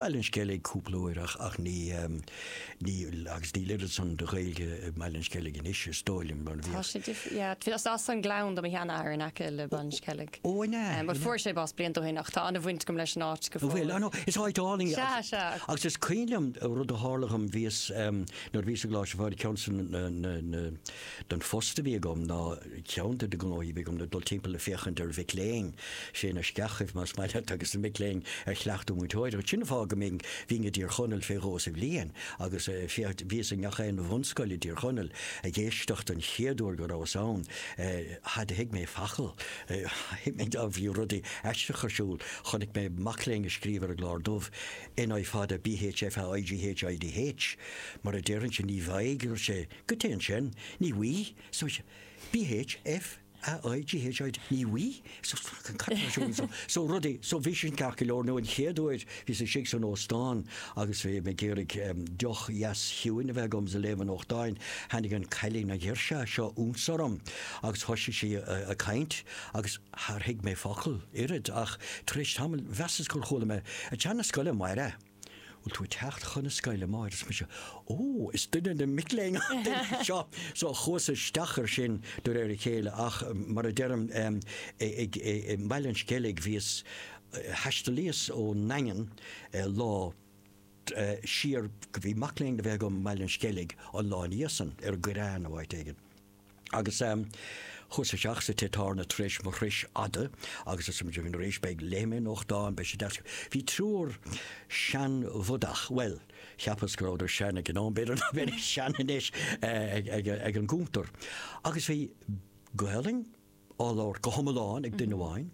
Bhaile an Sceilg cúpla uair ach ach ní ní agus níl oiread san de Ghaeilge i mBaile an Sceilg anois is dóigh liom mar a bhíodh. Tá sé difriúil, yeah. Bhí is as an Gleann do mo sheanathair in aice le Baile an Sceilg. Ó an ea? But fuair sé bás blianta ó shin ach tá an-bhaint agam leis an áit go fóill. Bhfuil? Á no, is áit álainn í. Sea, sea. Agus is cuimhin liom rud a tharla dhom, bhíos nuair a bhíos i gColáiste Mhuire, ceann na na na den phost a bhí agam ná, Ceann de na gnóthaí a bhí agam ná dul timpeall ag féachaint ar mhic léinn, sé na scoileanna más maith leat, agus na mic léinn ar chleachtadh múinteoireacht. Sin an fáth go mbínn, bhínn i dTír Chonaill fé dhó sa bhliain agus féach, bhíos i ngach aon bhunscoil i dTír Chonaill ag éisteacht an chéad uair go rabhas ann, char thuig mé focal, thuig mé dá bhí rudaí aisteacha ar siúl, chonaic mé mac léinn ag scríobh ar an gclár dubh, N I fada, B H F A I G H I D H mar a déarfainnse, ní bhfaighidh, dúirt sé, goidé sin, ní bhfuigh, so B H F A I G H I D ní bhfuigh so fucking cut na siúil so so rudaí so bhí sin aisteach go leor nó an chéad uair bhíos istigh san óstán agus bhí mé ag iarraidh em, deoch dheas chiúin a bheith agam is ag léamh an nuachtáin tháinig an cailín an ghirseach seo ionsorm agus thoisigh sí a, ag caint agus char thuig mé focal ar bith ach tar éis tamaill mheasas gur chuala mé ag teacht 'na scoile Máire bhfuil tú ag teacht chun na scoile, amárach? Arsa mise, Ó, is duine de na mic léinn í seo! So chuas isteach ar sin de réir a chéile ach mar a deirim, ag Baile an Sceilg bhíos, thaistealaíos ón nDaingean lá siar, bhí mac léinn le bheith agam i mBaile an Sceilg an lá ina dhiaidh san, ar an gCoireán nó áit éigin. Agus chuas isteach sa tigh tábhairne tar éis mo thruis fhada agus smaoiníos beidh, léifidh mé an nuachtán, beidh sé deas. Bhí triúr seanbhodach, bhuel, cheapas go rabhadar sean ag an am, b'fhéidir nach mbeidís sean anois, ag an gcuntar agus bhí Gaolainn, á labhairt go hiomlán ag duine amháin,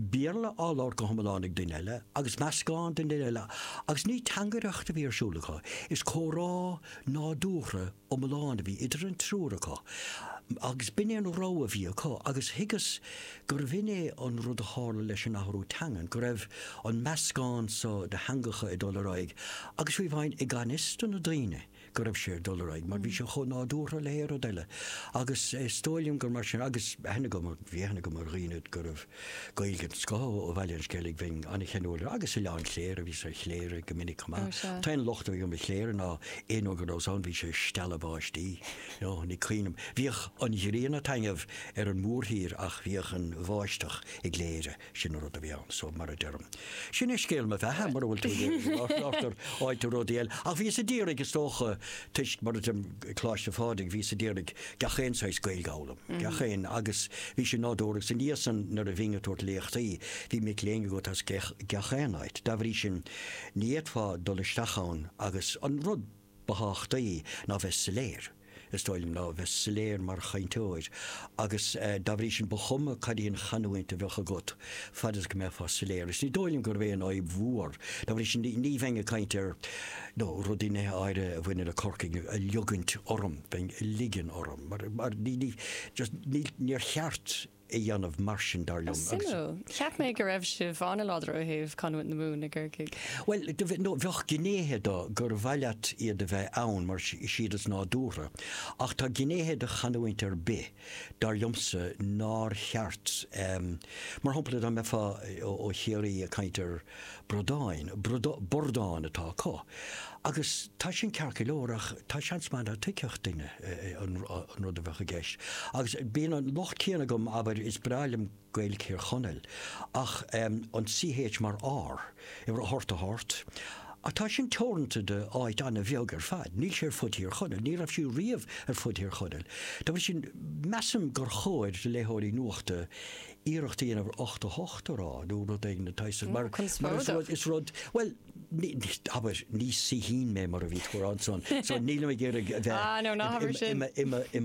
Béarla á labhairt go hiomlán ag duine eile, agus meascán ag an duine eile, agus ní teangaireacht a bhí ar siúl acu, is comhrá nádúrtha iomlán a bhí idir an triúr acu, agus b'in é an rogha a bhí acu, agus thuigeas gurbh in é an rud a tharla leis an athrú teangan, go raibh an meascán so de theangacha ag dul ar aghaidh, agus fiú amháin i ganfhios do na daoine, go raibh sé ag dul ar aghaidh mar bhí sé chomh nádúrtha le haon rud eile agus is dóigh liom gur mar sin agus tá aithne agam, bhí aithne agam ar dhaoine go raibh Gaeilge den scoth ó Bhaile an Sceilg, bhínn an-cheanúil air agus Oileán Chléire, bhíos ar Chléire go minic chomh maith. An t-aon locht a bhí agam ar Chléire ná aon uair go rabhas ann bhí sé ag stealladh báistí, no, ní cháinim. Bhíodh an ghrian ag taitneamh ar an mórthír ach bhíodh an bháisteach i gCléire. Sin an rud a bhí ann, so mar a deirim. Sin é scéal mo bheatha, mura bhfuil tú ag iarraidh go labhróchainn faoi rudaí eile. Ach bhíos ag iarraidh, is dócha, toisc, mar a deirim, Coláiste Phádraig, bhíos ag iarraidh gach aon saghas Gaeilge a fhoghlaim, gach aon, agus bhí sin nádúrtha, agus i ndiaidh san, nuair a bhínn ag tabhairt léachtaí, bhí mic léinn agat as gach aon áit. Dá bhrí sin, ní fhéadfá dul isteach ann agus an rud. ba thábhachtaí ná bheith soiléir, is dóigh liom, ná bheith soiléir mar chainteoir agus dá bhrí sin ba chuma cad í an chanúint a bheadh agat, fad is go mbeifeá soiléir. Is ní dóigh liom gur bheith in aghaidh mhór, dá bhrí sin ní bheinn ag caint ar nó rudaí nithe áirithe a bhaineann le Corcaigh a liogaint orm, bheinn a ligean orm mar ní, just níl, níor cheart. a dhéanamh mar sin, dar liom. Suimiúil. Cheap mé go raibh sibh an-láidir ó thaobh chanúint na Mumhan i gCorcaigh. Bhuel, bheadh gnéithe de gur mhaith leat iad a bheith ann mar is iad is nádúrtha, ach tá gnéithe de chanúint ar bith, dar liomsa, nár cheart. Mar shampla, dá mbeifeá ó Chiarraí ag caint ar. Brodáin, Brod, Bordán atá acu. Agus tá sin ceart go leor ach tá seans maith nach tuigfeadh duine an rud a bheadh i gceist. Agus bíonn an locht céanna agam, abair, is breá liom Gaeilg Thír Chonaill, ach an CH mar R, abair ocht a hort. Ach tá sin teoranta do áit an-bheag ar fad. Níl sé ar fud Thír Chonaill, ní raibh sé riamh ar fud Thír Chonaill. Dá bhrí sin, measaim gur chóir do léitheoirí nuachta, iarracht a dhéanamh 88 a rá nó rud éigin ná, mar is rud bhuel abair ní saoithín mé mar a bhí tú ann san so nílim ag iarraidh a bheith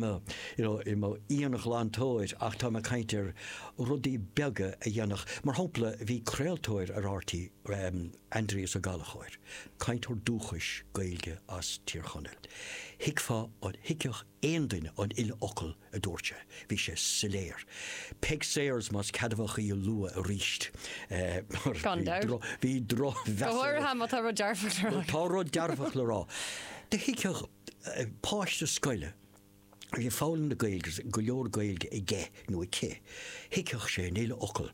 i mo íonghlantóir ach táim ag caint ar rudaí beaga a dhéanfadh mar shampla bhí craoltóir ar RTÉ Aindrias Ó Gallchóir cainteoir dúchais Gaeilge as Tír Chonaill thuigfeá an thuigfeadh aon duine an uile fhocal a dúirt sé. Bhí sé soiléir. Peig Sayers, más ceadmhach í a lua arís, mar Gan dabht. bhí drochmheas Go háirithe má tá rud dearfach le rá. Tá rud dearfach le rá. Do thuigfeadh páiste scoile a bhí ag foghlaim na Gaeilge agus go leor Gaeilge aige nó aici, thuigfeadh sé an uile fhocal.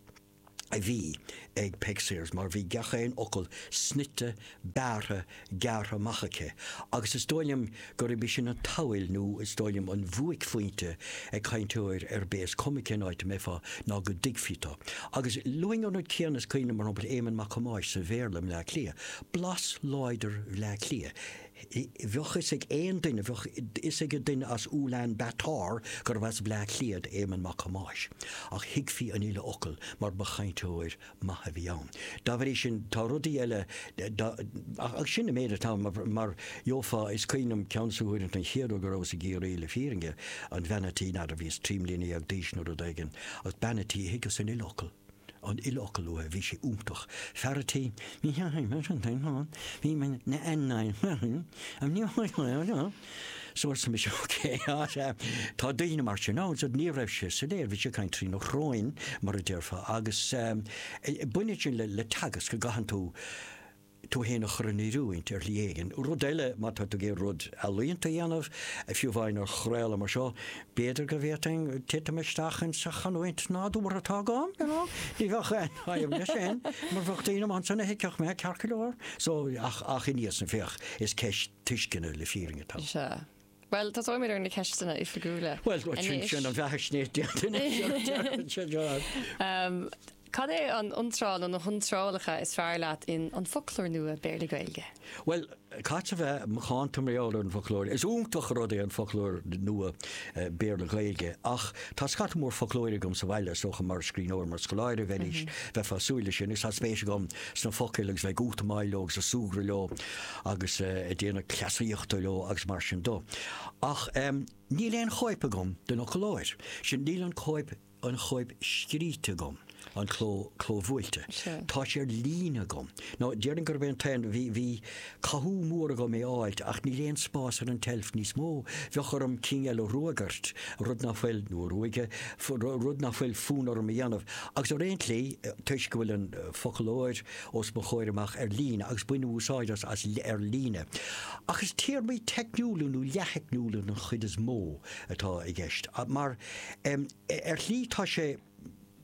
a bhí ag Peig Sayers mar bhí gach aon fhocal snoite, bearrtha, gearrtha amach aici agus is dóigh liom gurb í sin an tábhacht nó is dóigh liom an bhuaicphointe ag cainteoir ar bith, is cuma cén áit a mbeifeá, ná go dtuigfí tú. Agus baineann an rud céanna, is cuimhin liom, mar shampla, Éamonn Mac Thomáis sa Bhéarla i mBleá Cliath, blas láidir Bhleá Cliath. Bheadh fhios ag aon duine, bheadh fhios ag duine as Ulan Bator gurbh as Bleá Cliath Éamonn Mac Thomáis, ach thuigfí an uile fhocal mar ba chainteoir maith a bhí ann. Dá bhrí sin, tá rudaí eile, ach sin an méid atá ann, mar gheofá, is cuimhin liom ceann des na huaireanta an chéad uair go rabhas i gCiarraí, le fírinne, an bhean a' tí, n'fheadar, bhíos trí mbliana déag d'aois nó rud éigin, agus bean a' tí thuigeas an uile fhocal. aon fhocal uaidh, bhí sé iontach fear a' tí, bhí sé ag baint an tae lán, bhí mé na an na an ní chuid chuid chuid chuid So arsa mise ok á sea tá daoine mar sin ann so ní raibh sé soiléir bhí sé ag caint trína shróin mar a déarfá agus eh baineann sin le teagasc go gcaitheann tú tú fhéin a chur in oiriúint ar shlí éigin. Rud eile, má tá tú ag iarraidh rud ealaíonta a dhéanamh, fiú amháin ar chraoladh mar seo, b'fhéidir go bhféadfainn titim isteach insa chanúint nádúrtha atá agam, you know. Ní bheadh aon fhadhb leis sin, mar bheadh daoine amach ansin a thuigfeadh mé, ceart go leor. So, ach, ach inniu, féach, is ceist tuisceana le fírinne atá ann. Bhuel, tosóimid ar na ceisteanna oifigiúla Bhuel, anois. sin an bheathaisnéis déanta anois. Cad é an iontráil nó na hiontrálacha is fearr leat in An Foclóir Nua, Béarla-Gaeilge? Bhuel, caithfidh mé a bheith an-dáiríre ar an bhfoclóir. Is iontach rud é An Foclóir Nua, Béarla-Gaeilge, ach tá scata mór foclóirí agam sa bhaile, is dócha, mar scríbhneoir, mar scoláire agus arís, bheifeá ag súil leis sin, agus tá spéis agam sna focail agus bheith ag útamáil leo agus ag súgradh leo. agus déanamh cleasaíochta leo agus mar sin de. Ach níl aon chóip agam den fhoclóir sin, níl an cóip, an chóip scríte agam, an cló, clóbhuailte. Tá sé ar líne agam. Nó déarfainn gurb é an t-aon, bhí, bhí cathú mór orm é a fháilt ach níl aon spás ar an tseilf níos mó. Bheadh orm cinn eile ruagairt, rud nach bhfuil, nó a ruaigeadh, rud nach bhfuil fonn orm a dhéanamh. Agus ar aon tslí, toisc go bhfuil an foclóir, os mo chomhair amach ar líne agus bainim úsáid as as ar líne. Ach is téarmaí teicniúla nó leath-theicniúla den chuid is mó atá i gceist. Mar, em, ar shlí tá sé,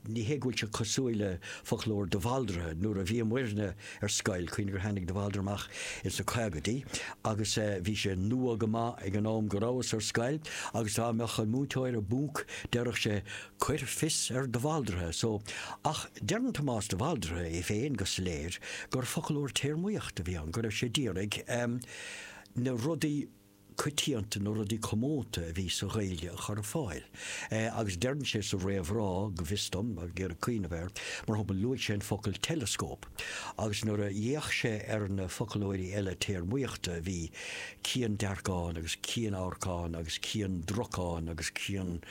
ní hé go bhfuil sé cosúil le foclóir de Bhaldraithe, nuair a bhíomairne ar scoil, cuimhnigh gur tháinig de Bhaldraithe amach ins na caogaidí agus, eh, bhí sé nua go maith ag an am go rabhas ar scoil agus dá mbeadh an múinteoir i bponc déarfadh sé, Cuir fios ar de Bhaldraithe so, ach deireann Tomás de Bhaldraithe é féin go soiléir gur foclóir téarmaíochta a bhí ann, go raibh sé d'iarraidh na rudaí coitianta, na rudaí comónta a bhí sa Ghaeilge a chur ar fáil. Agus deireann sé sa réamhrá, go bhfios dom, ag iarraidh cuimhneamh air, mar shampla, luaigh sé an focal teileascóp, agus nuair a d'fhéach sé ar na foclóirí eile téarmaíochta a bhí, ciandearcán agus cianamharcán agus ciandracán agus cian,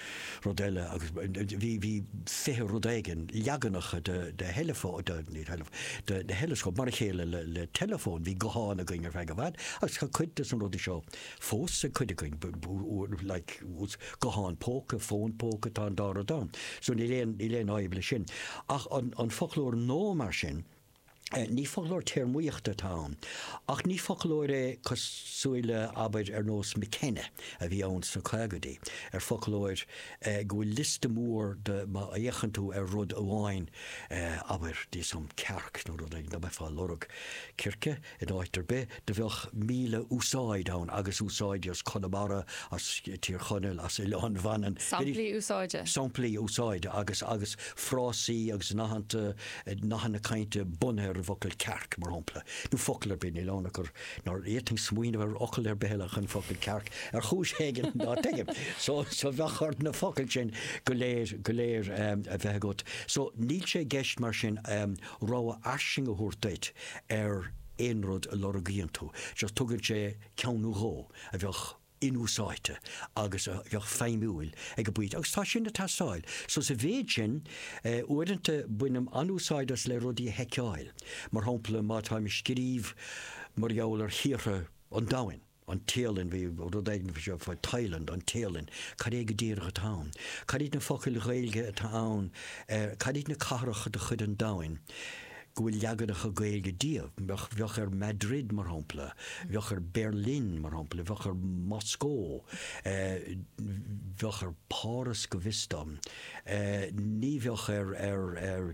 rud eile agus bhí, bhí fiche rud éigin, leaganacha de, de theileafón, de, ní theileafón, de, de theileascóip, mar a chéile le, le teileafóin, bhí gutháin againn ar feadh i bhfad agus tá cuid de sna rudaí seo fós ag cuid againn, like, gutháin póca, fón póca, tá an dá rud ann. So níl aon, níl aon fhadhb leis sin. Ach an, an foclóir nua mar sin, Ní foclóir téarmaíochta atá ann, ach ní foclóir é cosúil le, abair, ar nós McKenna a bhí ann sna caogaidí, ar foclóir go bhfuil liosta mór de má fhéachann tú ar rud amháin, abair, d'íosfainn cearc nó rud éigin, dá mbeifeá ag lorg circe. In áit ar bith do bheadh míle úsáid ann agus úsáidí as Conamara, as Tír Chonaill, as Oileán Mhanann. Samplaí úsáide. Samplaí úsáide agus agus frásaí agus nathanta, nathanna cainte bunaithe ar an bhfocal cearc, mar shampla. Nó focal ar bith, níl ann ach gur nár fhéadfainn smaoineamh ar fhocal ar bith eile ach an focal cearc ar chúis éigin ná tuigim. So so bheadh ort na focail sin go léir go léir a bheith agat. So níl sé i gceist mar sin rogha fhairsing a thabhairt duit ar aon rud a lorgaíonn tú, just tugann sé ceann nó dhó a bheadh inúsáidte agus a bheadh feidhmiúil ag an bpointe agus tá sin ag teastáil. So sa mhéid sin, uaireanta bainim an-úsáid as le rudaí a sheiceáil, mar shampla má táim ag scríobh mar gheall ar thíortha an domhain, an Téalainn, bhí rud éigin faoi seo, faoi Thailand, an Téalainn, cad é go díreach atá ann? Cad iad na focail Ghaeilge atá ann ar, cad iad na cathracha de chuid an domhain go bhfuil leaganacha Gaeilge díobh? Bheadh ar Madrid, mar shampla, bheadh ar Berlin, mar shampla, bheadh ar Mhoscó, bheadh ar Pháras go bhfios dom, ní bheadh ar, ar, ar.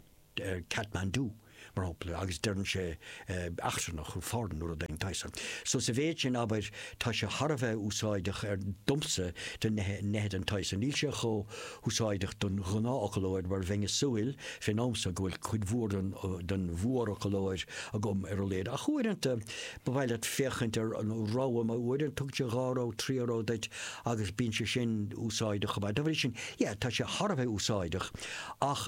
Kathmandu, mar shampla, agus deireann sé eachtrannach nó foreign nó rud éigin den tsaghas san. So sa mhéid sin, abair, tá sé thar a bheith úsáideach ar, domsa, do nithe, nithe den tsaghas san. Níl sé chomh húsáideach don ghnáthfhoclóir mar bheinn a' súil, fén am so, go bhfuil cuid mhór den, den mhórfhoclóir agam ar a laghad. Ach uaireanta ba mhaith leat féachaint ar an rogha, mar uaireanta tugann sé dhá rogha, trí rogha duit agus bíonn sé sin úsáideach chomh maith. Dá bhrí sin, yeah, tá sé thar a bheith úsáideach ach,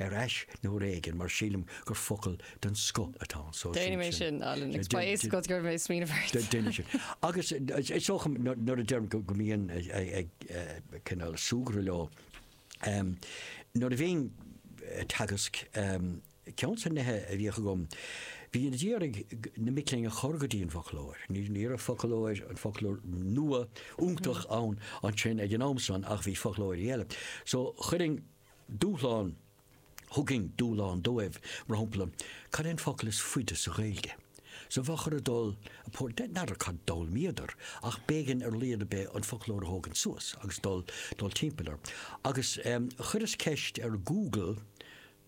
ar ais nuair éigin mar sílim gur focal den scoth atá ann. So Déanfaidh mé sin, Alan, agus ba é is go gcuirfidh mé smaoineamh ort. Déanfaidh sin. Agus is dócha dom nuair a deirim go mbínn ag cineál súgradh leo, nuair a bhínn ag teagasc, ceann des na nithe a bhíodh agam, bhínn a d'iarraidh na mic léinn a chur go dtí an bhfoclóir. Ní raibh foclóir, an foclóir nua, iontach ann ansin ag an am san ach bhí foclóirí eile. So chuirfinn Dúshlán, Thugainn dúshlán dóibh, mar shampla, cad é an focal is faide sa Ghaeilge? So bheadh orthu dul, por, de, n'fheadar cad d'fhoghlaimíodar, ach b'éigean ar a laghad ar bith an foclóir a thógaint suas agus dul, dul timpeall air. Agus ehm, chuireas ceist ar Google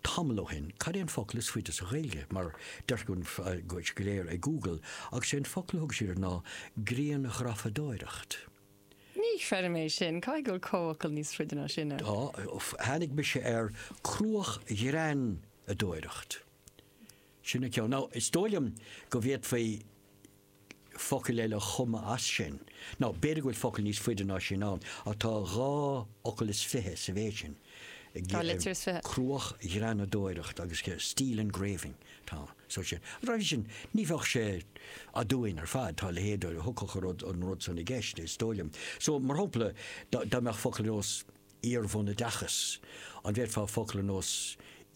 tamall ó shin, cad é an focal is faide sa Ghaeilge? Mar deirtear go bhfuil go léir ag Google, agus is é an focal a thug siad ná grianghrafadóireacht. Ní chreidim é sin. Caithfidh go bhfuil comhfhocal níos faide ná sin ann. Tá. Tháinig mise ar cruachghreanadóireacht. Sin an ceann. Nó is dóigh liom go bhféadfaí focail eile a chumadh as sin. Nó b'fhéidir go bhfuil focal níos faide ná sin ann, ach tá dhá fhocal is fiche sa mhéid sin. Dhá litir is fiche. Cruachghreanadóireacht agus steel engraving. Tá. So sin. So i mBéarla, ní bheadh sé aduain ar fad, tá a leithéid go dtiocfadh an rud, an rud san i gceist, is dóigh liom. So, mar shampla, dá, dá mbeadh focal ar nós iarbhunoideachas, an bhféadfá focal ar nós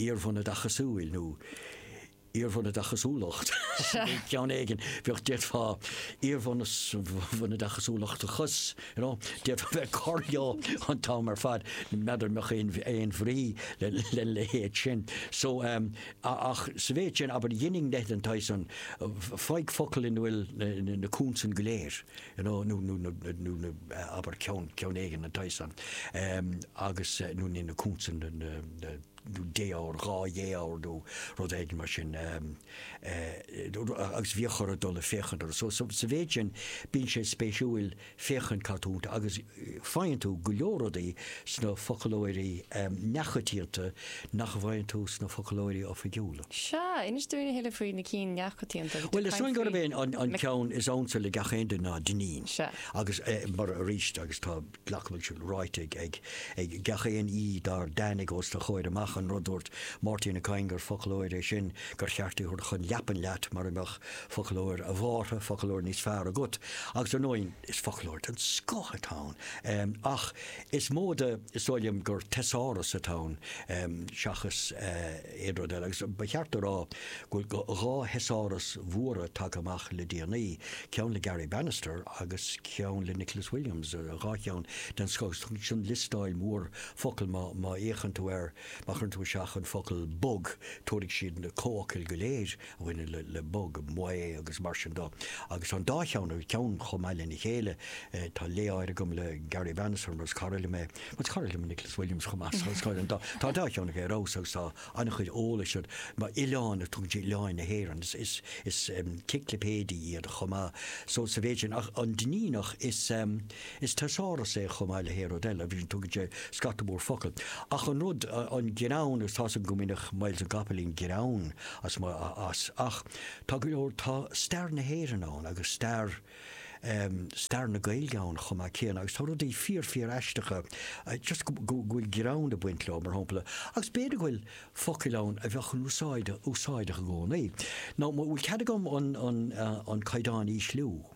iarbhunoideachasúil nó iarbhunoideachasúlacht, ceann éigin, bheadh, d'fhéadfá iarbhunoid, bhunoideachasúlachtachas, you know, d'fhéadfá bheith ag cur leo an t-am ar fad, n'fheadar an mbeadh aon, aon bhrí lena leithéid sin. So, Ach sa mhéid sin, abair, dheininn leithéid den tsaghas san, faigh focal ina bhfuil na consain go léir, you know, nó na, nó na, abair, ceann, ceann éigin, den tsaghas san, agus, nó nó na consain, na, na, na, nó défhoghar, dhá dhéfhoghar nó rud éigin mar sin, agus bhíodh orthu dul ag féachaint orthu. So, sa mhéid sin, bíonn sé spéisiúil. féachaint cad tá iontu agus faigheann tú go leor rudaí sna foclóirí neamhchoitianta nach bhfaigheann tú sna foclóirí oifigiúla. Sea, inis dúinn a thuilleadh faoi na cinn neamhchoitianta. Bhuel, is dóigh gurb é an ceann is ansa le gach aon duine ná Dineen. Sea. Agus, mar, arís, agus tá, glacaim go bhfuil sé ráite ag gach aon aoi dár dtáinig os do chomhair amach, an rud a dúirt Máirtín Ó Cadhain gur foclóir é sin gur cheart é a thabhairt chun leapan leat mar a mbeadh Foclóir, ab fhearra, foclóir níos fearr agat, agus ar ndóigh is foclóir den scoth atá ann, ach is móide is dóigh liom gur teasáras atá ann seachas aon rud eile, agus ba cheart a rá go bhfuil dhá theasáras mhóra tagtha amach le déanaí, ceann le Garry Bannister agus ceann le Nicholas Williams, dhá cheann den scoth, agus sin liostáil mhór focal, má fhéachann tú air, má chuireann tú isteach an focal bog tabharfaidh siad na comhfhocail go léir. bhaineann le bog ann, abair agus mar sin de agus tá an dá cheann gach ceann chomh maith lena chéile. Tá lé ar leith agam le Garry Bannister mar is cara liom é, mar is cara liom Nicholas Williams chomh maith so is cara liom, tá an dá cheann aige ar fheabhas agus tá an-chuid eolais, abair má tá oileán ann tugann sé oileáin na hÉireann, is ciclipéidí iad chomh maith so sa mhéid sin ach an Duinníneach is. Is teasáras é chomh maith le haon rud eile, you see, tugann sé scata mór focal. Ach an rud, an greann, agus tá sé go minic, Myles na gCopaleen, greann as, as, ach tá go leor, tá stair na hÉireann ann agus stair ehm, stair na Gaeilge ann chomh maith céanna agus tá rudaí fíor, fíor aisteacha, just go, go bhfuil greann ag baint leo, mar shampla, agus b'fhéidir go bhfuil focail ann a bheadh in úsáid, úsáideach i gcónaí. Now, an bhfuil cead agam an, an, an caighdeán a ísliú?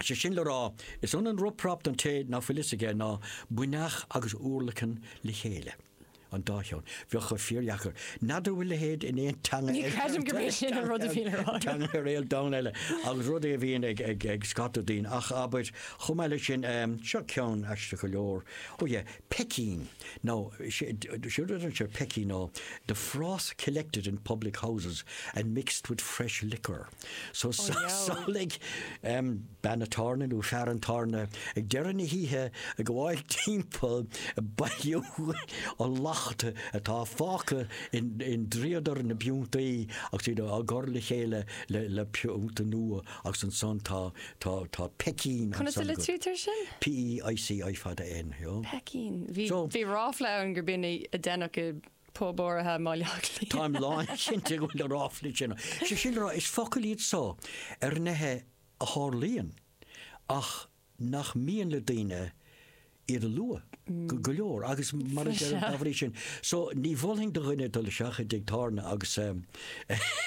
Is é sin le rá, is ionann rup rap don té ná fuil fhios aige ná buinneach agus urlacan le chéile. an dá cheann. Bheadh sé fíordheacair. N'fheadar an bhfuil a leithéid in aon teanga ar an domhan eile agus rud é a bhíonn ag, ag, ag scata daoine ach abair chomh maith leis sin um, seo ceann aisteach go leor ó yeah, peicín nó sé sé rud é peicín ná the froth collected in public houses and mixed with fresh liquor. So samhlaigh bean an tábhairne nó fear an tábhairne ag deireadh na hoíche ag gabháil timpeall ag bailiú an lacht atá fágtha i ndríodar na bpiúntaí agus iad á gcur le chéile le piúnta nua agus ansan tá peicín ansan go. Conas a litrítear sin? P-e-i-c-i fada N. Peicín. Bhí ráfla ann gur b'in a deineadh i pub áirithe má leagfaí. Táim lánchinnte go bhfuil na ráflaí sin ann. Sé sin le rá, is focail iad so ar nithe a tharlaíonn ach nach mian le daoine iad a lua, go leor, agus mar a deirim, dá bhrí sin so, ní mholfainn do dhuine dul isteach i dtigh tábhairne agus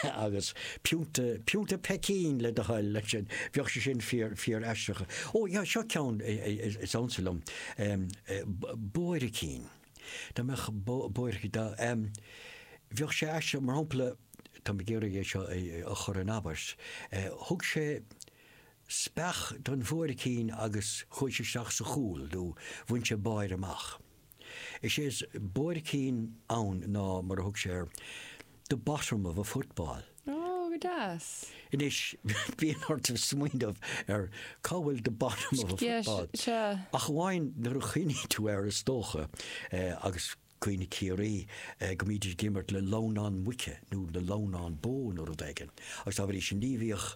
agus piúnta, piúnta peicín le do thoil, leis sin, bheadh sé sin fíor, fíor aisteach. Ó, seo ceann is ansa liom, buaircín. Dá mbeadh buairc, dá, bheadh sé aisteach, mar shampla, táim ag iarraidh é seo a chur in abairt, thug sé speach don bhuaircín agus chuaigh sé isteach sa chúl nó bhain sé báire amach. Is é is buaircín ann ná, mar a thug sé air, the bottom of a football. Ó, go deas. Anois, bíonn ort smaoineamh ar cá bhfuil the bottom of a football. Yes, sea. Ach amháin nuair a chuimhníonn tú air, is dócha, agus cuimhne Ciarraí, go mbídís ag imirt le lamhnán muice nó le lamhnán bó nó rud éigin. Agus dá bhrí sin, ní bhíodh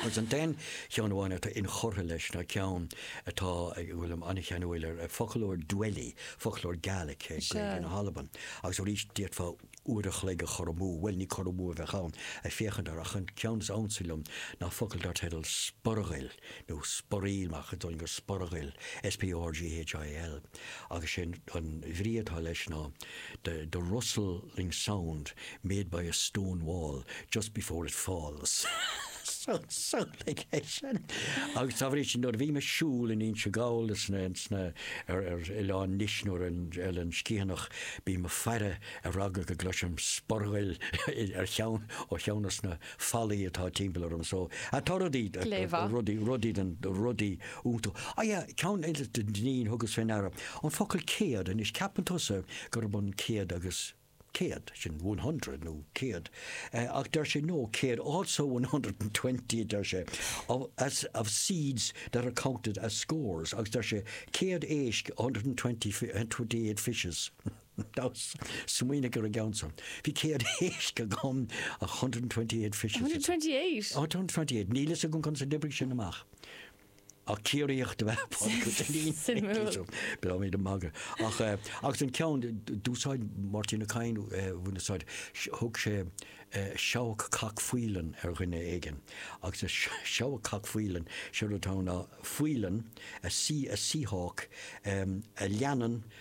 Agus an t-aon cheann amháin atá inchurtha leis ná ceann atá, go bhfuilim an-cheanúil air, foclóir Dwelly, foclóir Gaelic, Gaeilge na hAlban. Agus arís, d'fhéadfá uair a chloig a chur amú, bhuel, ní cur amú a bheadh ann, ag féachaint air, ach an ceann is ansa liom ná focal dar teideal 'Sporghail' nó 'Sporail' ach is dóigh liom gur 'Sporghail' S-P-O-R-G-H-A-I-L. agus sé an bhrí atá leis ná the the rustling sound made by a stone wall just before it falls so so like leis sin agus dá bhrí sin nuair a bhím ag siúl in Inse Gall is na sna ar ar oileán Nis nó ar an Oileán Sciathanach bím ag faire ar eagla go gcloisim sporghail ar cheann ó cheann dosna fallaí atá timpeall orm so I thought I'd eat Gléibhe. rudaí, rudaí den, rudaí iontú. Ah yeah, ceann eile den Dinneen thugas fé ndeara. An focal céad, anois ceapann tusa gurab an céad agus céad, sin one hundred nó céad, eh, ach deir sé no, céad it's also one hundred and twenty a deir sé, of, as, of seeds that are counted as scores, agus deir sé céad éisc a hundred and twenty fi, twenty eight fishes. Nós, Smaoinigh ar an gceann seo. Bhí céad éisc agam, a hundred and twenty-eight fishes. hundred and twenty-eight? A hundred and twenty-eight. Níl a fhios agam conas a d'oibrigh sé sin amach. Ach Ciarraíoch ab ea Pádraig Ó Duinnín. Suimiúil. Beidh mé ag magadh. Ach agus an ceann d'úsáid Máirtín Ó Cadhain bhain úsáid, thug sé seabhac cac faoileáin ar dhuine éigin agus is seabhac cac faoileáin, sin rud atá ann ná faoileann, a sea a sea hawk, a leanann,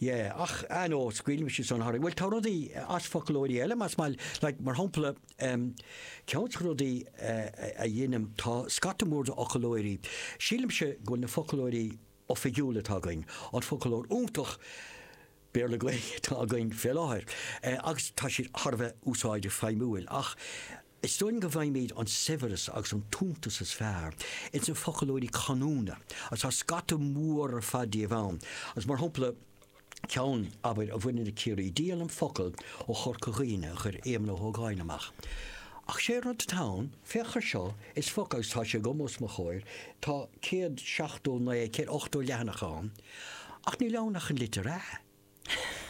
Yeah, ach anois, scaoil mise san tharam, bhuel tá rudaí as foclóirí eile más maith leat mar shampla ehm ceann des na rudaí a dheinim tá scata mór d'fhoclóirí, sílimse go bhfuil na foclóirí oifigiúla atá againn, an foclóir iontach Béarla Gaeilge atá againn fé láthair, eh, agus tá siad thar a bheith úsáideach feidhmiúil ach, Is dóigh liom go bhfaighimid an saibhreas agus an t-iontas is fearr ins na foclóirí canúna, agus tá scata mór ar fad díobh ann, agus mar shampla, ceann, abair, a bhaineann le Ciarraí, Díolaim Focal ó Chorca Dhuibhne a chuir Éamonn Ó hÓgáin amach. Ach 'sé rud atá ann, féach air seo, is foclóir, agus tá sé agam os mo chomhair, tá céad seachtó naoi, céad ochtó leathanach ann, ach níl ann ach an litir 'a'.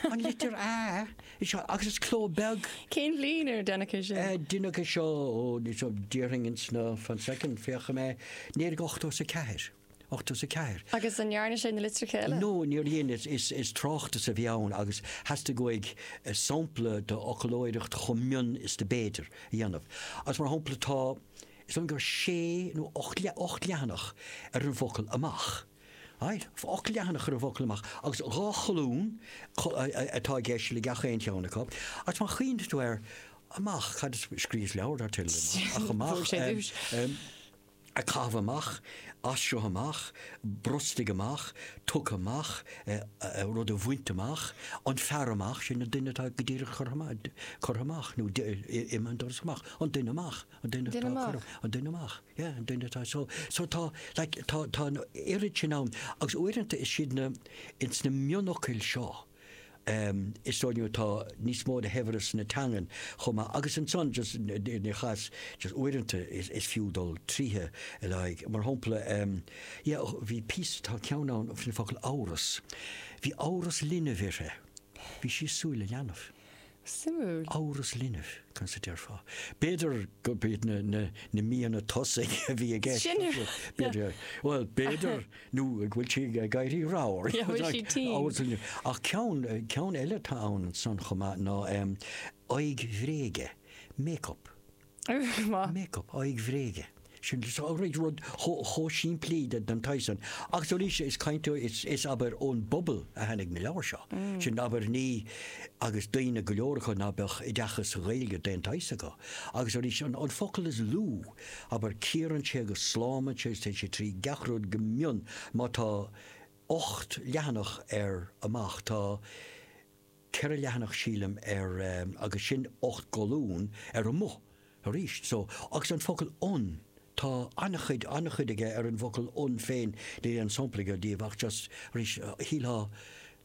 An litir A is seo agus is cló beag. Cén bhliain ar deineadh é sin? Deineadh é seo ó ní déarfainn ins na fan soicind féachfaidh mé naoi déag ochtó is a ceathair. Ochtó is a ceathair. Agus an ndearna sé na litreacha eile? Nó níor dhein is is is tráchtas a bhí ann agus theastaigh uaidh sampla d'fhoclóireacht chomh mion is do b'fhéidir a dhéanamh. Agus mar shampla tá is dóigh gur sé nó ocht ocht leathanach ar an bhfocal 'amach'. Ailt, ocht leathanach ar an bhfocal amach, agus dhá cholún atá i gceist le gach aon cheann acu, agus má chuimhníonn tú air, amach, cad is, scríos leabhar, ar Tuilleadh Amach, ach amach, em, a caitheamh amach, as seo amach, brostaigh amach, tugtha amach, eh, rud a bhaint amach, an fear amach, sin an duine atá go díreach curtha amach, curtha amach, nó imigh an doras amach, an duine amach. An duine atá ag cur amach. An duine amach. Yeah, an duine atá. So, so tá, like, tá, tá an oiread sin ann agus uaireanta is iad na, ins na mionfhocail seo, ehm, is dóigh liom atá níos mó de shaibhreas na teangan chomh maith agus ansan just ina chás, just uaireanta is, is fiú dul tríothu le haghaidh mar shampla, ehm, yeah, oh, bhí píosa, tá ceann ann faoin focal amhras. Bhí amhras linbh uirthi. Bhí sí ag súil le leanbh. Suimiúil. Amhras linbh, conas a déarfá? B'fhéidir go bhí na míonna tosaigh a bhí i gceist. B'fhéidir nó go bhfuil sí ag éirí ramhar. Ach ceann, ceann eile atá ann san chomh maith ná aghaidh bhréige, make-up. Make up, aghaidh bhréige. Sin rud chomh simplí den tsaghas san. Agus arís, is caint, is, abair, ón bpobal a tháinig na leabhair seo. Sin abair na, agus daoine go leor acu ná beadh oideachas sa Ghaeilge d'aon tsaghas acu. Agus arís, an focal is lú, abair, cíorann sé agus slámann sé agus téann sé trí gach rud go mion. Má tá ocht leathanach ar amach, tá. 4 leathanach sílim, ar agus sin 8 gcolún ar amuigh arís so agus an focal 'on' tá an-chuid, an-chuid aige ar an bhfocal 'on' féin níl aon sampla agam díobh ach just arís shílfeá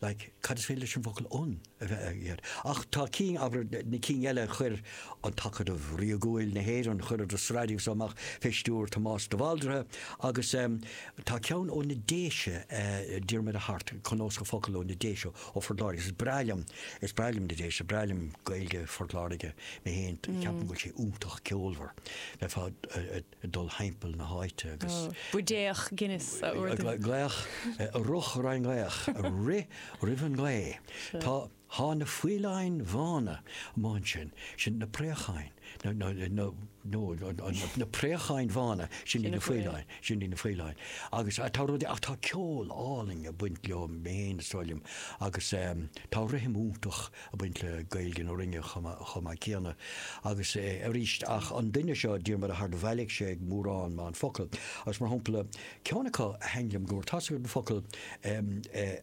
like cad is féidir leis an bhfocal 'on' a bheith aige ach tá cinn abair na cinn eile chuir an tAcadamh Ríogúil na hÉireann chuireadar sraith díobh so amach fé stiúir Tomás de Bhaldraithe agus tá ceann ó na Déise Diarmaid Ó hAirt cnuasach focal ó na Déise Ó Phort Láirge. Is breá liom, is breá liom na Déise, breá liom Gaeilge Phort Láirge mé féin. Ceapaim go bhfuil sé iontach ceolmhar, b'fhearr leat dul thimpeall na háite agus. buidéal Guinness a ordú. Glaoch, rith roimh an nglaoch, rith roimh an nglaoch. Thá, thá na faoileáin bhána amuigh ansin, sin na préacháin. na préacháin bhána, sin, sin iad na faoileáin. Agus tá rudaí, ach tá ceol álainn ag baint leo féin is dóigh liom agus tá rithim iontach ag baint le Gaeilge na Rinne chomh maith céanna. Agus arís, ach an duine seo, Diarmaid Ó hAirt, bhailigh sé mórán mórán focal agus mar shampla, ceann acu a thaithin liom go mór, tá a fhios agat, an focal,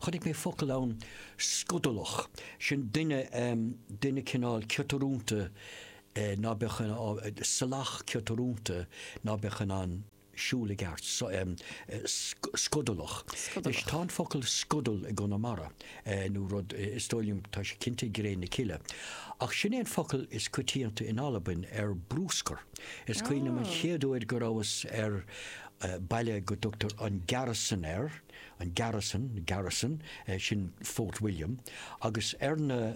Chonaic mé focal ann, scudalach. Sin duine, duine cineál ciotrúnta ná beadh in ann, salach ciotrúnta ná beadh in ann siúl i gceart. Scudalach. Anois, tá an focal scudal i gConamara, nó rud, is dóigh liom, tá sé cinnte i gCré na Cille. Ach sin é an focal is coitianta in Albain ar brúscar. Is cuimhin liom an chéad uair go rabhas ar, baile go dtugtar An Gearasdan air, an Gearasdan, Garrison, sin Fort William, agus ar na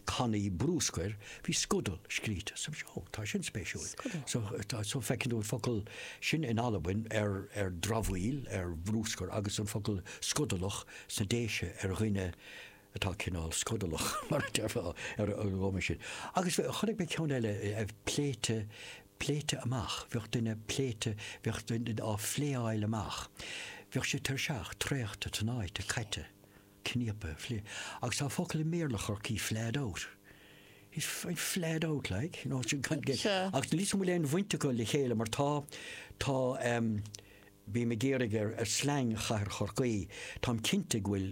cannaí brúscair bhí Scudal scríte. So tá sin spéisiúil. So feiceann tú an focal sin in Albain ar dramhaíl, ar bhrúscar, agus an focal scudalach sna Déise ar dhuine, atá cineál scodalach, mar a déarfá, ar an gcuma sin. Agus chonaic mé ceann eile a bheith pléite, pléite amach, bheadh duine pléite, bheadh duine á phléáil amach, bheadh sé tuirseach, traochta, tnáite, caite, cníopa, phlé. Agus tá an focal i mBéarla Chorcaí flahed out. He's he's flahed out, like, you know, sin gan gé. Ach níl a fhios agam an bhfuil aon bhaint acu le chéile mar tá, tá, em, bím ag iarraidh ar, ar slang chathair Chorcaí, táim cinnte go bhfuil,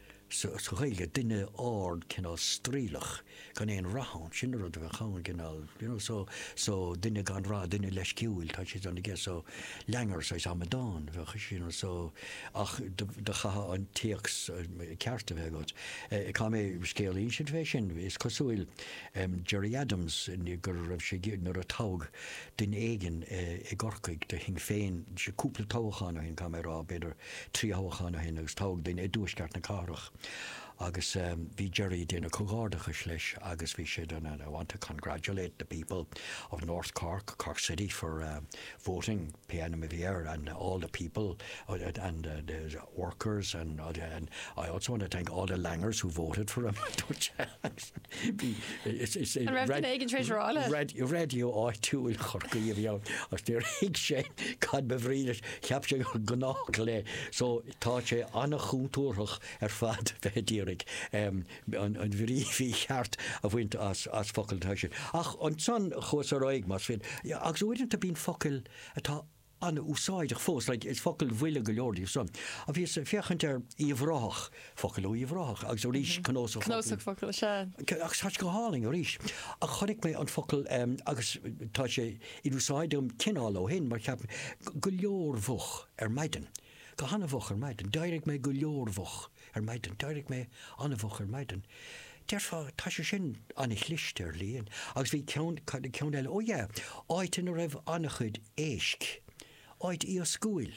sa Ghaeilge, duine ard, cineál straoilleach, gan aon rath ann, sin an rud a bheadh ann, cineál, you know, so, so, duine gan rath, duine leisciúil, tá siad ann aige, so, langueur, saghas amadán a bheadh, you know, so, ach do chaithfeá an téacs ceart a bheith agat. Chuala mé scéal iontach faoi sin. Is cosúil, em, Gerry Adams, go raibh sé, nuair a toghadh duine éigin i gCorcaigh do Shinn Féin, cúpla toghachán ó shin, caithfidh mé a rá, b'fhéidir, trí thoghachán ó shin agus toghadh duine i dtuaisceart na cathrach agus bhí Gerry ag déanamh comhghairdeachais leis agus he said I want to congratulate the people of North Cork, Cork City for voting pé ainm a bhí air and all the people and the workers and I also want to thank all the langers who voted for him, a dúirt sé. Bhí An raibh duine éigin tar éis rá leis? Raidió raidió áitiúil Chorcaí a bhí ann agus níor thuig sé cad ba bhrí leis cheap sé gur gnách le so tá sé an-chúntúrthach ar fad bheith ag iarraidh an an bhrí mhícheart a bhaint as as focail atá sin. Ach ansan chuas ar aghaidh más féidir agus uaireanta bíonn focail atá an-úsáideach fós, like is focail bhuile go leor díobh san. Ach bhíos ag féachaint ar Uíbh Ráthach, focail ó Uíbh Ráthach agus arís Cnuasach Focal. Cnuasach Focal, sea. Ach tá sé go hálainn arís. Ach chonaic mé an focal ehm agus tá sé in úsáid agam cineál ó shin mar cheap mé, go leormhoch ar maidin. go han-mhoch ar maidin. D'éirigh mé go leormhoch ar maidin. D'éirigh mé an-mhoch ar maidin. Déarfá, tá sé sin an-chliste, ar líne. Agus bhí ceann, cad é ceann eile? Ó yeah, áit ina raibh an-chuid éisc. Áit iascúil.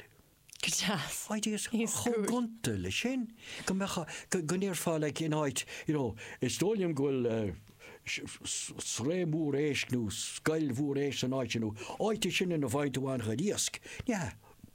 Go deas. Áit iascúil. Chomh gonta leis sin, go mbeadh, go ndéarfá like in áit, you know, is dóigh liom go bhfuil sraith mhór éisc nó scoil mhór éisc san áit sin nó áit é sin ina bhfaigheann tú an-chuid iasc. Yeah,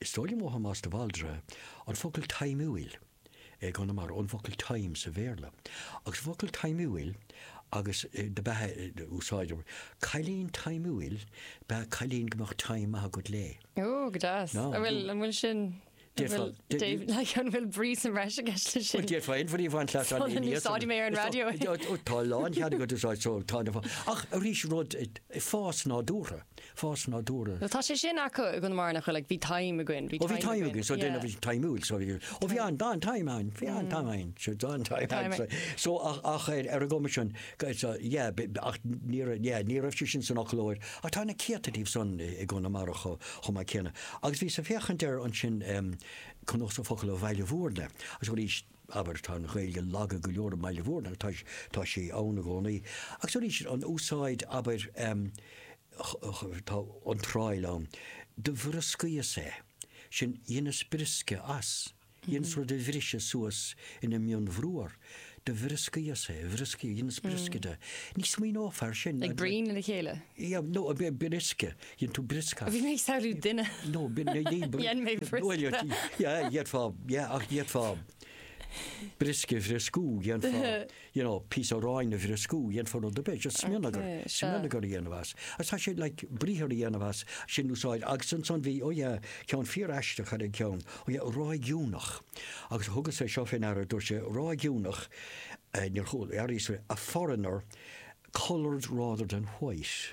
Is dóigh liom ó Thomás de Bhaldraithe an focal taimiúil i gConamara, ón bhfocal time sa Bhéarla, agus an focal taimiúil agus do bheadh a úsáid, cailín taimiúil ba ea cailín go mbeadh time maith agat léi. Ó, go deas. An bhfuil, an bhfuil sin, an bhfuil, like, an bhfuil brí sa mbreis i gceist leis sin? Bhuel, d'fhéadfá aon bhrí a bhaint as an líne. Úsáideann mé ar an raidió é. Tá a lán cheann agat úsáid, so, tá, ach arís rud, fás nádúrtha. fás nádúrtha. Tá sé sin acu i gConamara nach bhfuil ag, bhí time againn, bhí time againn. Ó bhí time againn, so déanaimis taimiúil, so bhí, ó bhí an, tá an time ann, bhí an time againn, so tá an time againn, so, so ach, ach ar, ar an gcuma sin, so yeah, b', ach ní raibh, yeah, ní raibh sé sin san fhoclóir, ach tá na céadta díobh san i, i gConamara cho, chomh maith céanna. Agus bhíos ag féachaint air ansin, um, cnuasach focal ó Bhaile Mhúirne, agus arís, abair, tá an Ghaeilge lag go leor i mBaile Mhúirne, tá sí ann i gcónaí, agus arís, an úsáid, abair, tá iontráil ann, do bhrioscaíos é, sin, dheineas briosca as, dheineas rud a bhriseadh suas ina mhionbhruar, do bhrioscaíos é, bhrioscaíos, dheineas briosca de, ní smaoineofá air sin. Ag bruíon le chéile? Yeah, no, briosca. Dhein tú brioscar. Bhí mé ag samhlú duine. No, dhein mé brioscar. Yeah, dhéanfá, yeah, ach dhéanfá briosca a bhrioscú, dhéanfá, you know, píosa aráin a bhrioscú, dhéanfá rud ar bith, just smionagar, smionagar a dhéanamh as. Agus tá sé, like, briathar a dhéanamh as, sin úsáid, agus ansan bhí, oh yeah, ceann fíor-aisteach ar an gceann, oh yeah, ráigiúnach. Agus thugas é seo fén aire, dúirt sé, ráigiúnach, níor chuala mé aríst, a foreigner, coloured rather than white.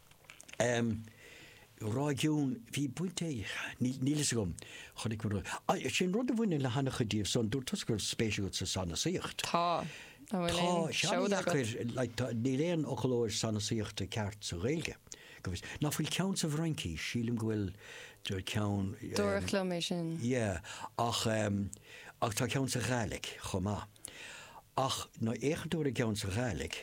ráigiún, bhí baint ag, níl a fhios agam, chonaic mé rud, sin rud a bhaineann le han-chuid díobh so dúirt tusa go raibh spéis agat sa sanasaíocht. Tá, an bhfuil aon seoda agat? Tá, seoda agat, níl aon fhoclóir sanasaíochta ceart sa Ghaeilge, go bhfios, ná fuil ceann sa bhFraincís, sílim go bhfuil ceann, dúradh liom é sin, yeah, ach tá ceann sa Ghaidhlig chomh maith ach má fhéachann tú ar an gceann sa Ghaidhlig,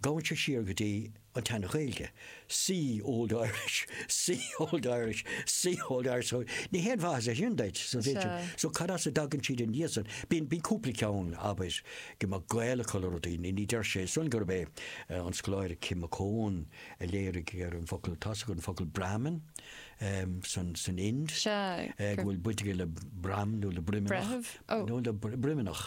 Gabhann sé siar go dtí an tSean-Ghaeilge, see Old Irish, see Old Irish, see Old Irish, so ní haon mhaith a thuilleadh sin duit, so bhí, so cad as a dtagann siad anois san, bíonn, bíonn cúpla ceann, abair, go mbeadh gaol acu le rudaí, ní, ní deir siad san gurb é an scoláire Kim McCone a léirigh ar an bhfocal, tá's agat an focal Brahmin, ehm, san, san Ind, eh, go bhfuil baint aige le broim nó le broimneach, nó le broimneach.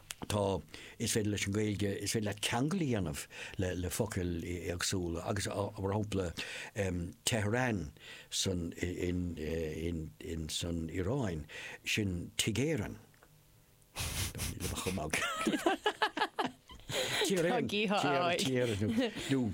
tá, is féidir leis an Ghaeilge, is féidir leat ceangal a dhéanamh le focail éagsúla agus mar shampla Tehran san, in, in, in, san Iaráin, sin Tigh Éireann. Tá chomh maith. Tír Éireann. Tír Éireann.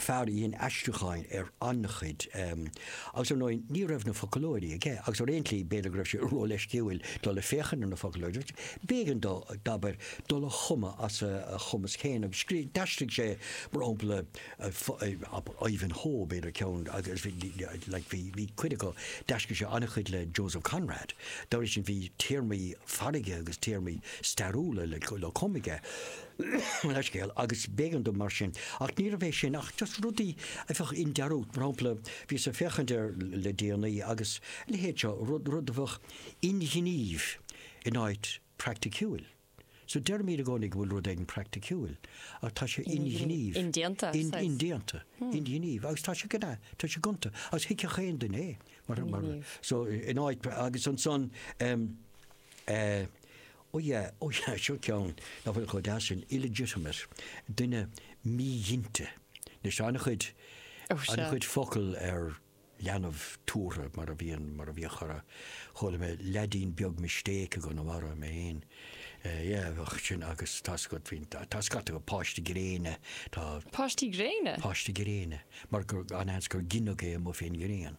fear a dhein aistriúcháin ar an-chuid, agus ar ndóigh ní raibh na foclóirí aige, agus ar aon tslí b'fhéidir go raibh sé róleisciúil dul ag féachaint ar na foclóirí, b'éigean dó, abair, dul a chumadh as a chumas féin, agus scríobh, d'aistrigh sé, mar shampla, Ivanhoe, b'fhéidir ceann, agus like bhí, bhí cuid acu, d'aistrigh sé an-chuid le Joseph Conrad, dá bhrí sin bhí téarmaí farraige agus téarmaí stairiúla le cumadh aige. an scéal agus b'éigean dó mar sin. Ach níorbh é sin ach just rudaí a bheadh i ndearúd. Mar shampla, bhíos ag féachaint air le déanaí agus a leithéid seo, rud, rud a bheadh inghnímh in áit praiticiúil. So deirim i gcónaí go bhfuil rud éigin praiticiúil ach tá sé inghnímh. Indéanta, says. Indéanta, inghnímh agus tá sé gonta, tá sé gonta agus thuigfeadh aon duine é mar, mar, so in áit agus ansan, eh, Ó yeah, ó yeah, seo ceann nach bhfuil chomh deas sin, illegitimate, duine míghinte. Anois, tá an-chuid, Oh, sure. an-chuid focal ar leanbh tabhartha, mar a bhíonn, mar a bhíodh chorr, chuala mé leaidín beag mistake i gConamara, mé fhéin, eh, yeah, ach sin, agus tá scata, tá scata acu, páiste gréine, tá, Páistí gréine? páiste gréine, mar gur, an-seans gur gineadh é amuigh fén ngréin.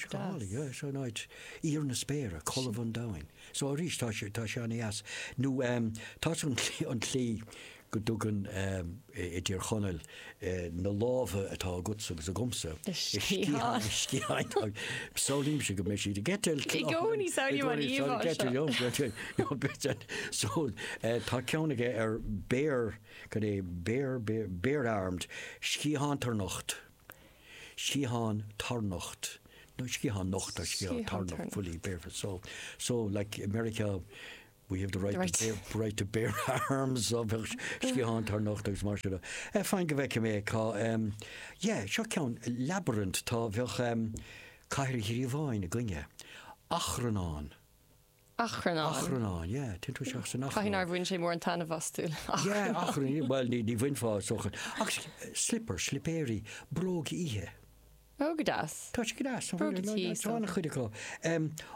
Scálaí, so in áit, íor na spéire, colbha an domhain. So arís tá sé, tá sé an-deas. Nó tá an tslí, an tslí go dtugann i dTír Chonaill na lámha atá agatsa agus agamsa, sciatháin, sciatháin, samhlaímse go mbeidh siad ag eitilt. I gcónaí samhlaím an íomhá seo. Ag eitilt liom, better. So tá ceann aige ar bare, cad é, bare, bare, bare-armed, sciathántharnocht. sciathán tarnocht, nó sciathán nocht, or sciathán tarnocht, fully barefoot, so, so like i Meiriceá we have the right to bear, right to bear arms, so bheadh sciathán tarnocht agus mar sin de. Eh, fine, go bhfeicfidh mé cá, em, yeah, seo ceann, labyrinth, tá, bheadh, em, cathair ghríobháin againne, achrannán. achrannán. Caithfidh nár bhain sé mórán taitneamh astu le hachrann. Bhuel, ní bhainfeá is dócha. Agus slipper, slipéirí, bróg oíche. Ó, go deas. Tá sé go deas. Bróga tí, so. Tá an-chuid acu. Ó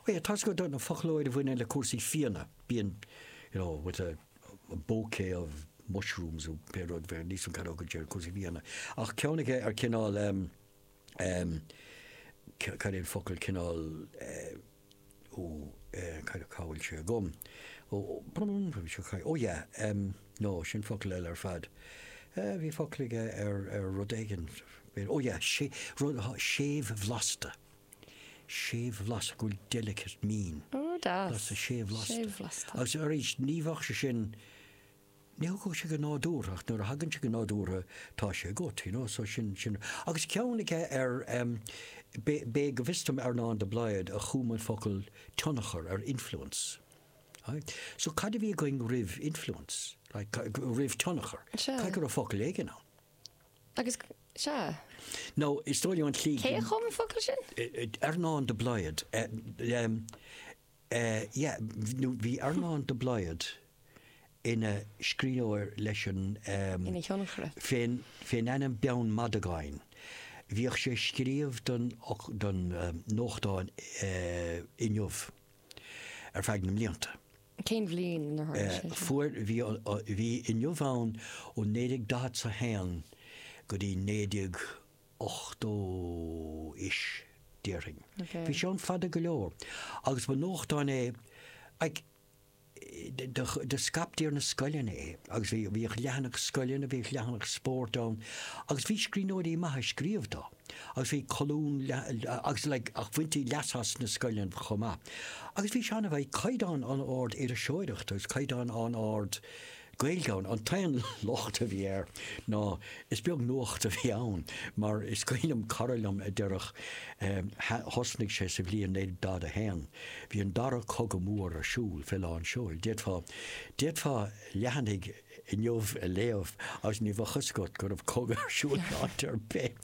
yeah, tá a fhios agat an foclóir a bhaineann le cúrsaí fíona, bíonn, you know, with a bouquet of mushrooms nó pé rud, bheadh níos mó cathróga de ar cúrsaí fíona. Ach ceann aige ar cineál, cad é an focal, cineál, ó cad cá bhfuil sé agam? ó bhfuil sé cá ó yeah em no sin focal eile ar fad eh bhí focal aige ar ar rud éigin bhí ó yeah so rud atá séimhbhlasta séimhbhlasta go bhfuil delicate mín ó deas séimhbhlasta séimhbhlasta agus arís ní bheadh sé sin Ní thagann sé go nádúrtha ach nuair a thagann sé go nádúrtha tá sé agat, you know, so sin, sin. Agus ceann aige ar em b'é, b'é go bhfios dom Earnán de Blaghad a chum an focal tionchar ar influence. Aye. So cad a bhí againn roimh influence? Like roimh tionchar? Sea. Cad go raibh focal éigin ann? Agus, sea. Nó is dóigh liom an tslí. Cé a chum an focal sin? Earnán de Blaghad. Em. Eh yeah, nó bhí Earnán de Blaghad ina scríbhneoir leis an em Ina thionchaire. fén fén ainm Beann Madagáin. Bhíodh sé ag scríobh don fhoc, don em, nuachtán eh Inniu ar feadh na mblianta. Cén bhliain inar tharla Eh sé seo? fuair, bhí an, bhí Inniu ann ó 1941 go dtí naoi déag 80 'is, déarfainn. Bhí sé ann fada go leor, agus ba nuachtáin é like, do scaiptí ar na scoileanna é, agus bhí, bhíodh leathanach scoileanna, bhíodh leathanach spóirt ann, agus bhí scríbhneoirí maithe ag scríobh dó, agus bhí colún agus like, ach bhaintí leas as sna scoileanna chomh maith. Agus bhí sé an-, bhí caighdeán an-ard iriseoireachta, agus caighdeán an-ard, Gaeilge ann. An t-aon locht a bhí air ná is beag nuacht a bhí ann, mar is cuimhin liom cara liom a déarfadh, thosnaigh sé sa bhliain 1941, bhí an dara cogadh mór ar siúl fé lán seoil, d'fhéadfá, d'fhéadfá leathanaigh Inniu a léamh agus ní bheadh a fhios agat go raibh cogadh ar siúl in áit ar bith,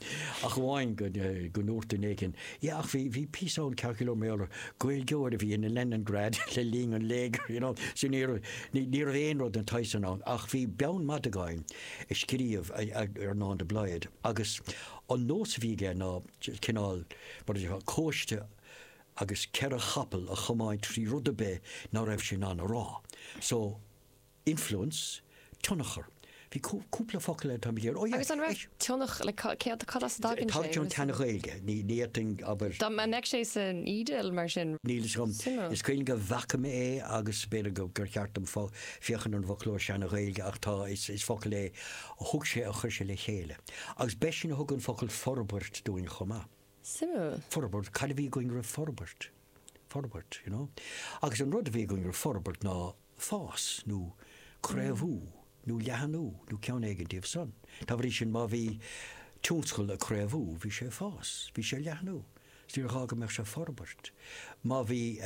ach amháin go ndúirt duine éigin, Yeah ach bhí, bhí píosa ann ceart go leor mar gheall ar Ghaeilgeoir a bhí in Leningrad le linn an léigir you know so ní raibh, ní raibh aon rud den tsaghas sin ann ach bhí Beann Madagáin ag scríobh Earnán de Blaghad agus an nós a bhí aige ná cineál mar a déarfá cóiste agus ceithre chapall a chomáint trí rud ar bith ná raibh sé in ann a rá so Influence, tionchar. Bhí cúpla focal eile, tá mé ag iarraidh, oh yeah, Agus an raibh tionch, like cad, cad as a dtagann sé? Tagann sé ón tSean-Ghaeilge, ní, ní fhéadfainn, abair. Dá mbeadh sé san fhidil, mar sin. Níl fhios agam. Suimiúil. Is cuimhin liom go bhfaca mé é agus b'fhéidir go, gur cheart dom fo, féachaint ar an bhfoclóir Sean-Ghaeilge ach tá, is, is focal é a thug sé, a chuir sé le chéile. Agus b'eisean a thug an focal forbairt dúinn chomh maith. Suimiúil. Forbairt, cad a bhí againn roimh forbairt? Forbairt, you know. Agus an rud a bhí againn roimh forbairt ná. fás, nó craobhú, nó leathanú, nó ceann éigin díobh san. Dá bhrí sin, má bhí tionscal ag craobhú, bhí sé ag fás, bhí sé ag leathnú, 's níor ghá go mbeadh sé ag forbairt. Má bhí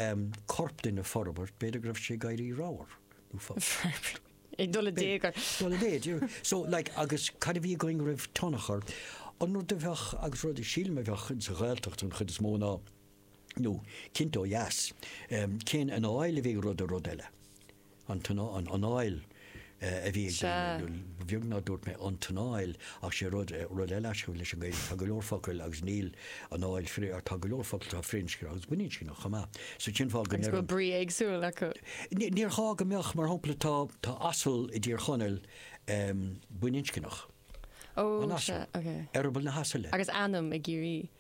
corp duine ag forbairt, b'fhéidir go raibh sé ag éirí ramhar, nó forbairt. ag dul i dtaobh air. Ag dul i méid, you know. So, like, agus cad a bhí againn roimh tionchar? An rud a bheadh, agus rud a sílim a bheadh ins an Ghaeltacht an chuid is mó ná, nó cinnte ó dheas, cén anáil a bheadh ag rud ar rud eile? An anáil a bhí ag daoine, bheag nár dúirt mé an tionchar, ach sé rud eile a chuir leis an Ghaeilge, tá go leor focail agus níl anáil, tá go leor focail atá firinscneach agus baininscneach chomh maith, so cén fáth go ndeir an. Agus go bhfuil brí éagsúil acu. Ní gá go mbeadh, mar shampla tá asal i dTír Chonaill baininscneach. Ó, sea, ok. Eireaball na hasaile. Agus ainm i gCiarraí.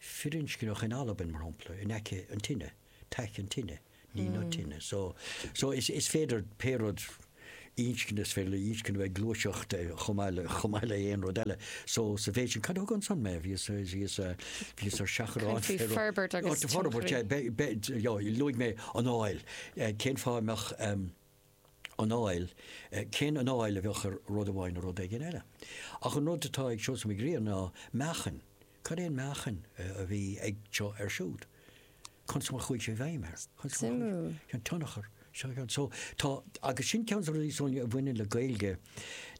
firinscneach in Albain, mar shampla, in aice an tine, teich an tine, ní na tine. So, so is, is féidir pé rud inscne, is féidir le inscne bheith gluaiseacht eh, chomh maith le, chomh maith le aon rud eile. So, sa mhéid san, cad a thugann san mé? Bhíos, bhíos, bhíos ar seachrán Caithfidh fé rud. forbairt agus Ó, tá forbairt, tionchar. eh, be, be, bheo, luaigh mé anáil. Eh, cén fáth a mbeadh, em, anáil, cén anáil a bheadh ag rud amháin ar rud éigin eile. Ach an rud atá ag Seosamh Mac Grianna ná meáchain. Cad é an meáchain a bhí ag seo ar siúd? Conas mar a chuaigh sé i bhfeidhm air? Suimiúil. An tionchar. So, tá, agus sin ceann de na rudaí, Sonia, a bhaineann le Gaeilge,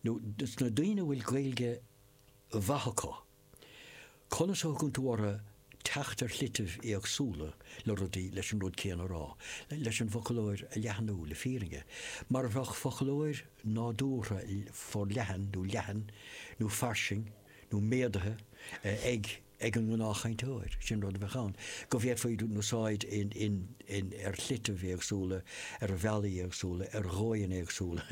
sna daoine a bhfuil Gaeilge mhaith acu, Conas a thugann tú orthu teacht ar shlitibh éagsúla le rudaí, leis an rud céanna a rá, leis an bhfoclóir a leathnú, le fírinne, mar a bheadh foclóir nádúrtha forleathan nó leathan nó fairsing nó méadaithe ag an ngnáthchainteoir, sin rud a bheadh ann, go bhféadfaidís úsáid in. in, ar shlitibh éagsúla, ar bhealaí éagsúla, ar dhóigheanna éagsúla,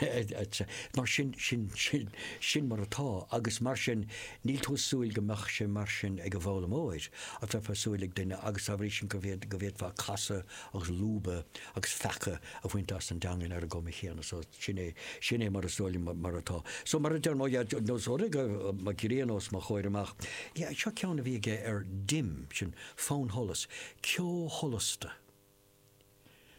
etc. Mar sin, sin, sin, sin mar atá agus mar sin níl tú ag súil go mbeadh sé mar sin ag an bhfoghlaimeoir, ach bheifeá ag súil ag duine agus dá bhrí san go, go bhféadfá casadh agus lúbadh agus feacadh a bhaint as an dteangain ar an gcuma chéanna. So, sin é, sin é mar is dóigh liom mar atá. So, mar a deir mo, ar nós, ó Mac Grianna os mo chomhair amach, yeah, seo ceann a bhí aige ar dim, sin, Fannsholas, ceo sholasta.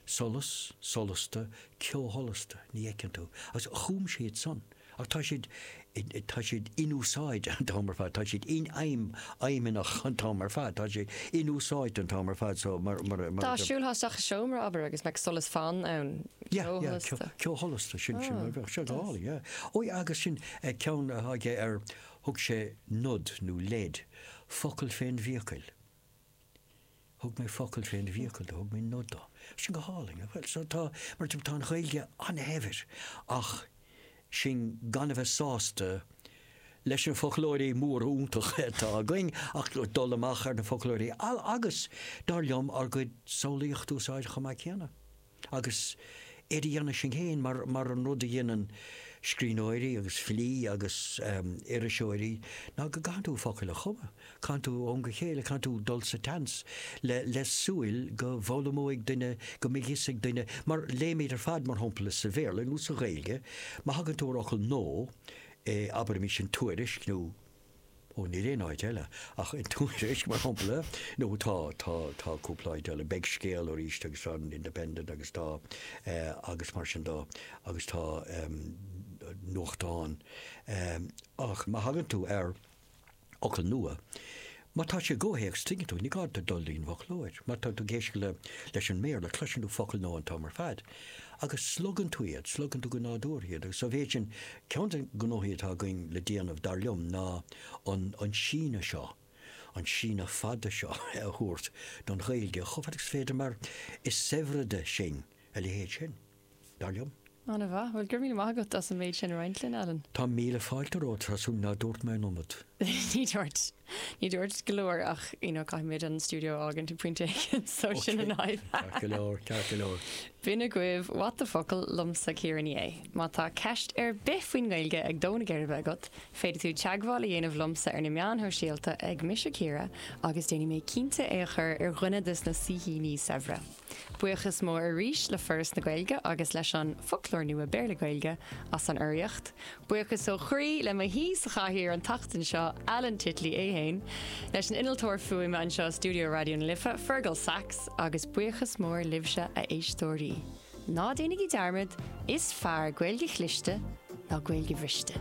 Solas, solasta, ceo sholasta, ní fheiceann tú. Agus chum siad san. Ach tá siad, tá siad inúsáidte an t-am ar fad, tá siad infheidhm, fheidhmeannach an t-am ar fad, tá siad inúsáidte an t-am ar fad so mar, mar a, mar a. Dá siúlthá isteach i seomra, abair, agus mbeadh solas fann ann, ceo sholasta. Yeah, yeah, ceo sholasta, sin, sin, bheadh sé go hálainn, yeah. Ó yeah, agus sin ceann atá aige ar, thug sé nod nó leid, focal fén bhfiacail. Thug mé focal fén bhfiacail do, thug mé nod do. Sin go hálainn. Bhuel, so tá, mar sin, tá an Ghaeilge an-shaibhir ach sinn gan a bheith sásta leis na foclóirí móra iontacha atá againn ach dul amach ar na foclóirí eile agus, dar liom, ár gcuid samhlaíocht a úsáid chomh maith céanna. Agus é a dhéanamh sin féin, mar an rud a dheineann scríbhneoirí agus filí agus iriseoirí, ná go gcaitheann tú focail a chumadh, caitheann tú ó am go céile, caitheann tú dul sa tseans le súil go bhfoghlaimeoidh duine, go mbeidh fhios ag duine, mar léimid ar fad, mar shampla, sa Bhéarla nó sa Ghaeilge, má thagann tú ar fhocal nua, abraimis in Tuairisc nó. Ó, níl aon áit eile ach i dTuairisc, mar shampla, nó tá, tá, tá cúpla áit eile, beidh Scéal arís agus tá an Independent agus tá, agus mar sin de, agus tá nuachtáin, ach má thagann tú ar fhocal nua, má tá sé i gcomhthéacs, tuigeann tú, ní gá duit dul go dtí'n bhfoclóir, má tá tú ag éisteacht leis an mBéarla, cloiseann tú focal nua an t-am ar fad. Agus slogann tú iad, slogann tú go nádúrtha iad agus sa mhéid sin, ceann de na gnóthaí atá againn le déanamh, dar liom, ná an síneadh seo, an síneadh fada seo a thabhairt don Ghaeilge chomh fada agus is féidir mar is saibhre di sin a leithéid sin, dar liom. An-mhaith. Bhuel, go raibh míle maith agat as an méid sin a roinnt linn, Alan. Tá míle fáilte romhat, Treasa, ná dúirt mé an iomad? Ní dúirt. Ní dúirt tú go leor ach you know caithfimid an stiúideo a fhágaint ag pointe éigin so sin an fhadhb. B'in agaibh What the focal liomsa Ciara Ní É. Má tá ceist ar bith faoin nGaeilge ag dó na geirbe agat, féadfaidh tú teagmháil a dhéanamh liomsa ar na meáin shóisialta ag mise Ciara agus déanfaidh mé cinnte é a chur ar dhuine de na saoithíní saibhre. Buíochas mór arís le Foras na Gaeilge agus leis an Foclóir Nua Béarla-Gaeilge as an urraíocht. Buíochas ó chroí le mo shaoi sa chathaoir an tseachtain seo, Alan Titley é féin, leis an innealtóir fuaime anseo i stiúideo Raidió na Life, Fearghal Saxe, agus buíochas mór libhse, a éisteoirí. Ná déanaigí dearmad, is fearr Gaeilge chliste ná Gaeilge bhriste!